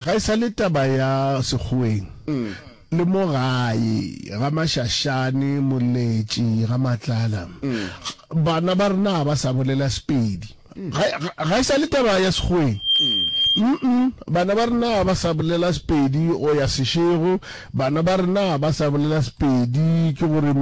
Ga e sa le taba ya sekgoweng le mo gae, ga Mashashane, Moletši, ga Matlala. Bana ba rena ga ba sa bolela Sepedi. Ga, ga, ga e sa le taba ya sekgoweng. Mm-mm, bana ba rena ga ba sa bolela Sepedi go ya Seshego. Bana ba rena ga ba sa bolela Sepedi, ke gore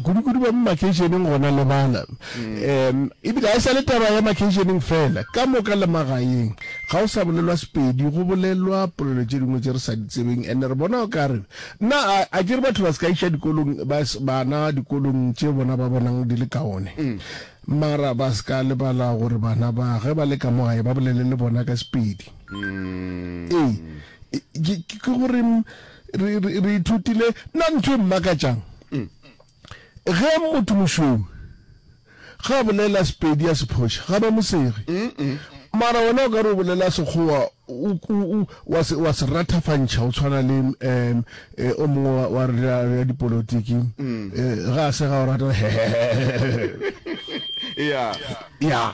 kudu-kudu ba mo makeišeneng gona le bana. Um, ebile ga e sa le taba ya makeišeneng fela, ka moka le magaeng ga o sa bolelwa Sepedi, go bolelwa polelo tše dingwe tše re sa di tsebeng. And re bona o ka re, na a, a ke re batho ba se ka iša dikolong, ba, bana dikolong tše bona ba bonang di le kaone? Mara ba se ka lebala gore bana ba ge ba le ka mo gae ba bolele le bona ka Sepedi. Ee. ke gore re ithutile nna ntho e mmakatšang mm. ge motho mošweu ga a bolela sepedi ya sephoša ga ba mosege mara wena o ka re o bolela sekgowa wa se rathafantšha o tshwana le um o mongwe wa ya dipolotiki mm. eh, ga a se ga o rata ya ya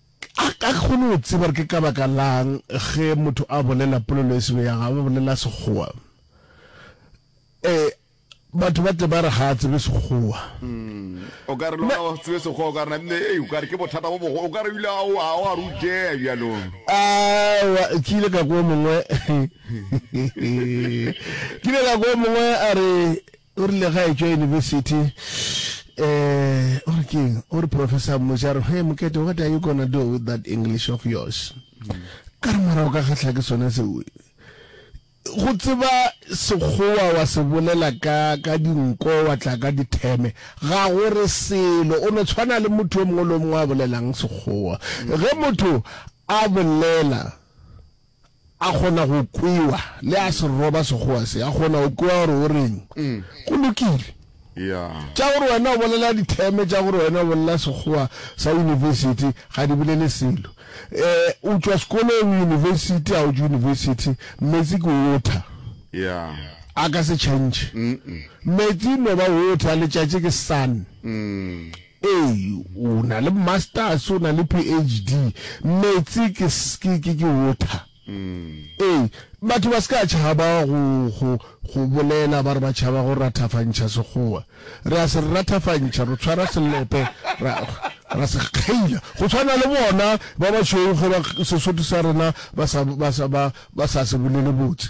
A ka kgone go tseba gore ke ka baka la'ng ge motho a bolela polelo e sego ya gagwe, a bolela Sekgowa? Ee, batho ba tle ba re ga a tsebe Sekgowa. O ka re le gona o se tsebe Sekgowa, o ka re na bile, ee, o ka re ke bothata bo bogo, o ka re o ile a o a o a rutšea bjalo. Aowa, ke ile ka kwa o mongwe, ke ile ka kwa o mongwe a re, O rile ge a etšwa yunibesithi, eh, o re ke eng? O re professor a mmotša a re, Hee, Mokete, what are you gonna do with that English of yours? Ka re, Mara o ka kgahla ke sona seo. Go tseba Sekgowa wa se bolela ka, ka dinko, wa tla ka ditheme, ga go re selo. O no tshwana le motho yo mongwe le yo mongwe a bolelang Sekgowa. Ge motho a bolela. A kgona go kwewa, le a se roba Sekgowa se, a kgona go kwewa gore o reng. Go lokile. Tša gore wena o bolela ditheme, tša gore wena o bolela Sekgowa sa University, ga di bolele selo. O tšwa sekolong, University, ga o tšwe University, meetse ke water. A ka se change. Meetse e no ba water, letšatši ke sun. Ee, o na le Masters, o na le PHD. Meetse ke, ke, ke, ke water. Ee, batho ba se ka tšhaba go, go, go bolela ba re ba tšhaba go rathafantšha Sekgowa. Re a se rathafantšha, re tshwara selepe, ra, ra se kgeila. Go swana le bona ba bašweu ge ba, Sesotho sa rena ba sa, ba sa, ba, ba sa se bolele botse.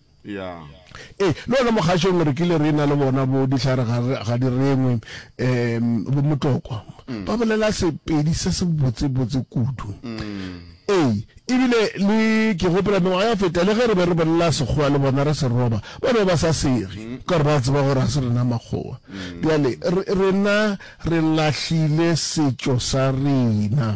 Ee, le gona mo kgašong re kile re na le bona bo dihlare ga di rengwe um bo motlokwa mm. ba bolela sepedi se se botsebotse kudu mm. ee ebile le ke gopela mengwaga ya feta le ge re be re bolela sekgowa le bona re se roba ba be ba sa sege mm. ka gore ba tseba gore ga se rena makgowa bjale rena re lahlile setšo sa rena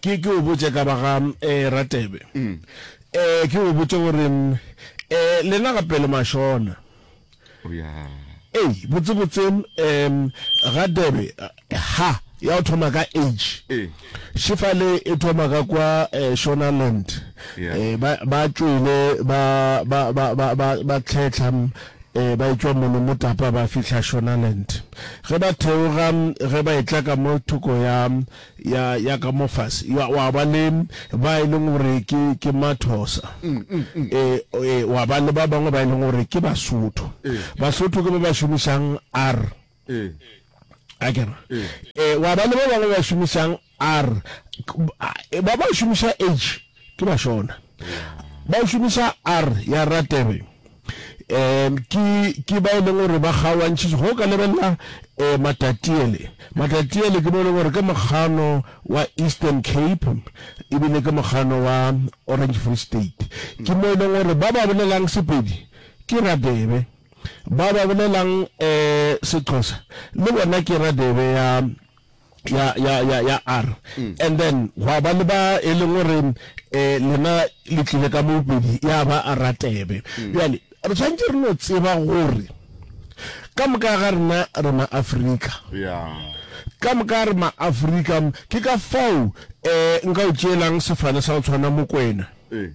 Ke ke o botše ka ba ga Ratebe. Ke o botše gore lena gape le mašona. Ei, botsebotse Ratebe ha ya go thoma ka H. Šefale e thoma ka kwa Shonaland. Ba tšwele ba tlhehla ba etšwa mono motapa ba fihla Shonaland. Ge ba theoga ge ba etla ka mo thoko ya ya, ya ka mo fase, wa, wa ba le ba e leng gore ke, ke Mathosa, e, e, wa ba le ba bangwe ba e leng gore ke Basotho. Basotho ke ba ba šomišang R, a ke re, e, wa ba le ba bangwe ba šomišang R, ba ba šomiša H. Ke Bashona. Ba o šomiša R ya Ratebe. Um ke ke ba e leng gore ba kgaoantšhitše go ka lebelela um matatiele matatiele ke mo e leng gore ke mokgano wa eastern cape ebile ke mokgano wa orange free state ke mo e leng gore ba ba bolelang sepedi ke radebe ba ba bolelang um sexhosa le bona ke radebe ya ya ya ya ya r mm. and then gwa ba le ba e leng gore um lena le tlile ka mopedi ya ba a ratebe mm. bjale re tshwanetse re no tseba gore ka moka ga rena re maaforika ka moka re maaforika ke ka fao um nka o tšeelang sefane sa go tshwana mokwena eh.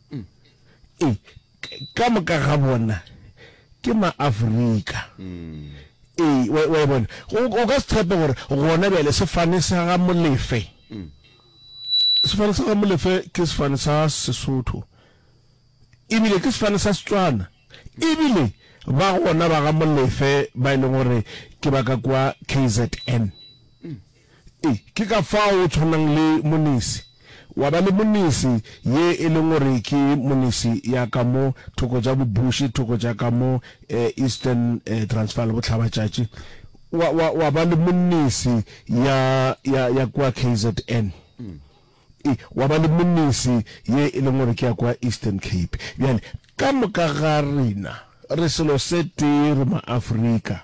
e, ka moka ga bona ke ma-Afrika. E, wa, wa e bona. O, o ka se tshepe gore gona bjale sefane sa ga Molefe, sefane sa ga Molefe ke sefane sa Sesotho, ebile ke sefane sa Setswana, ebile ba gona ba ga Molefe ba e leng gore ke ba ka kua KZN. E, ke ka fao o tshwanang le monese, wa ba le monese, ye e leng gore ke monese ya ka mo thoko tša bobuši, thoko tša ka mo Eastern Transvaal, bohlabatšatši, wa, wa, wa ba le monese ya, ya, ya kua KZN. E, wa ba le monese ye e leng gore ke ya kua Eastern Cape. Bjale, ka moka ga rena re selo se tee, re Maafrika.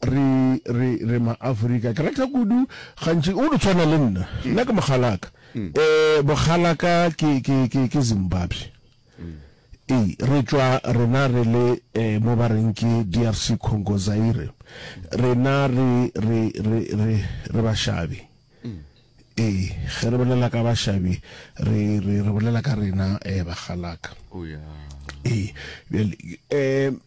Re, re, re ma-Afrika. Ke rata kudu, gantši, o no tshwana le nna. Nna ke mogalaka. Ee, bogalaka ke, ke, ke, ke Zimbabwe. Ee, re tšwa, rena re le, ee, mo ba reng ke DRC Congo, Zaire. Rena re, re, re, re, re bašabi. Ee, ge re bolela ka bašabi, re, re, re bolela ka rena, ee, bagalaka. Ee, bjale, ee.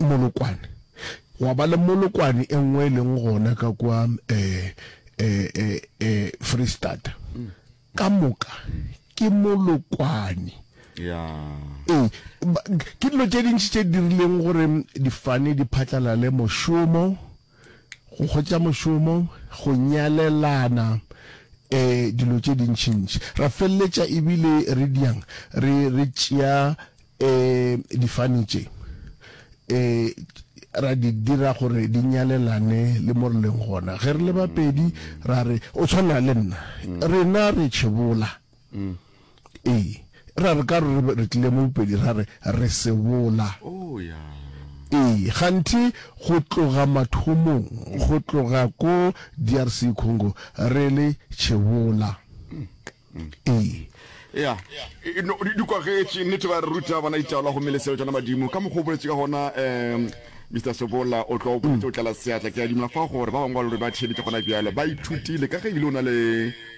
Molokwane. Gwa ba le molokwane e nngwe e leng gona ka kwa Freistata. Ka moka ke molokwane. Ee, ke dilo tše dintši tše dirileng gore difane di phatlalale mošomo. Go hwetša mošomo, go nyalelana, ee, dilo tše dintšintši. Ra feleletša e bile re diang re, re tšea ee, difane tše, ee, ra di dira gore di nyalelane le mo re leng gona. Ge re le bapedi, ra re, O tshwana le nna. Rena re tšhebola. Ee, e ra re ka re re tlile mo Bopedi ra re re se bola. Ee, kganthe go tloga mathomong, go tloga ko DRC Congo re le Chebola. Ee. Ea, e, no, di kwagetše, nnete ba re ruta bona ditaola gomme le seo tšona madimo, ka mokgwa o boletše ka gona, um, Mister Sobola, o tlo o boletše o tlala seatla, ke a dima fa gore ba bangwe ba lore ba thebetše gona bjalo, ba ithutile, ka ge ebile o na le.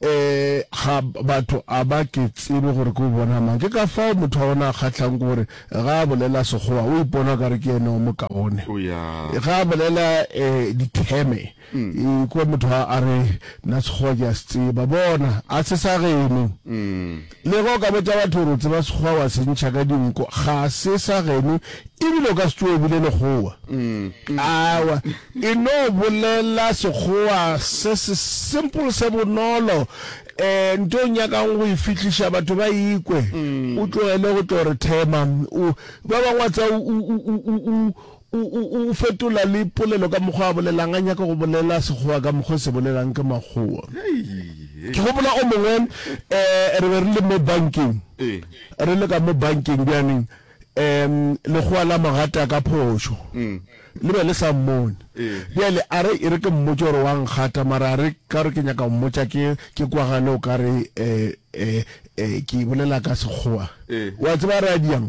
Ee, ga batho a ba ke tsebe gore ke o bona mang. Ke ka fao motho wa bona a kgatlhang ke gore ge a bolela Sekgowa o ipona ka re ke yena o mokaone. O ya. Ge a bolela eh, ditheme, e kwa motho a a re, Nna Sekgowa ke a se tseba. Bona, a se sa geno. Le ge o ka botša batho gore o tseba sekgowa wa se ntšha ka dinko, ga se sa geno e bile o ka se tsoge o bile lekgowa. Aowa, e no bolela sekgowa se se simple se bonolo. Um nto o nyakang go e fihliša batho ba e kwe, o tlogele go tlo re thema. O, ba bangwe wa tseba, o, o, o, o, O, o, o fetola le polelo ka mokgwa a bolelang, a nyaka go bolela Sekgowa ka mokgwa e se bolelang ke Makgowa. Ke gopola o mongwe, um, re be re le mo bankeng, re le ka mo bankeng bjaneng, um, Lekgowa la mo gata ka phošo, le be le sa mmone. Bjale a re, e re ke mmotše gore wa nkgata, mara a re, ka gore ke nyaka go mmotša ke, ke kwagale o ka re, um, um, um, ke bolela ka Sekgowa. O a tseba a re a diang?